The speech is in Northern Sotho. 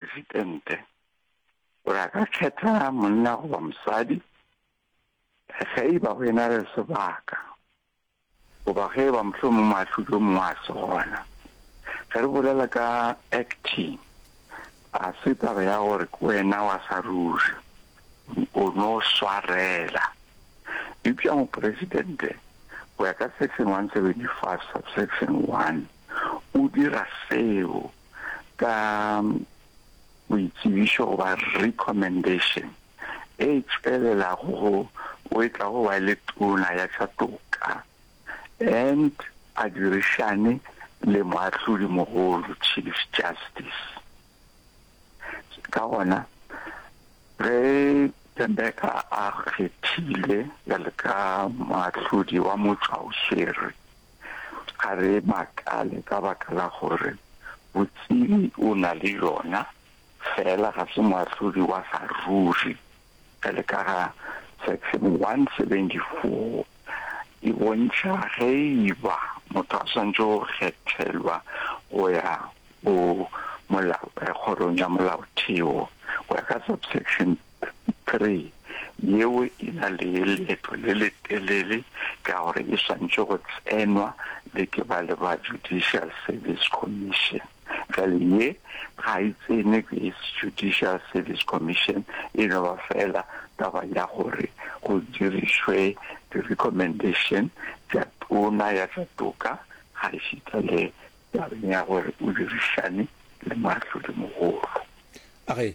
Presidente gore a ka kgetha monna goba mosadi ge e ba go ena le sebaka goba ge e ba mohlomong moahlodi o mongwe a se gona. Ge re bolela ka acting, a se taba ya gore ke wena wa sa ruri o no swarela eupša mopresidente go ya ka section 175 subsection 1 o dira seo ka boitsebišo goba recommendation e tšwelelago go o e tlago ba le tona ya tša toka and a dirišane le moahlodi mogolo, Chief Justice. Ka gona ge Thembeka a kgethilwe bjalo ka moahlodi wa motšwaoswere, ga re makale ka baka la gore botsebi o na le yona, feela ga se moahlodi wa ga ruri. Bjale ka ga Section 174 e bontšha ge e ba motho a swanetše go kgethelwa go ya go molao, kgorong ya molaotheo, go ya ka Subsection 3, Yeo e na le leeto le letelele ka gore e swanetše go tsenwa le ke ba le ba Judicial Service Commission. Bjale ye ga e tsenwe ke Judicial Service Commission e no ba feela taba ya gore go dirišwe di-recommendation tša tona ya tša toka ga e šita le tabeng ya gore o dirišane le moahlodimogolo. Age,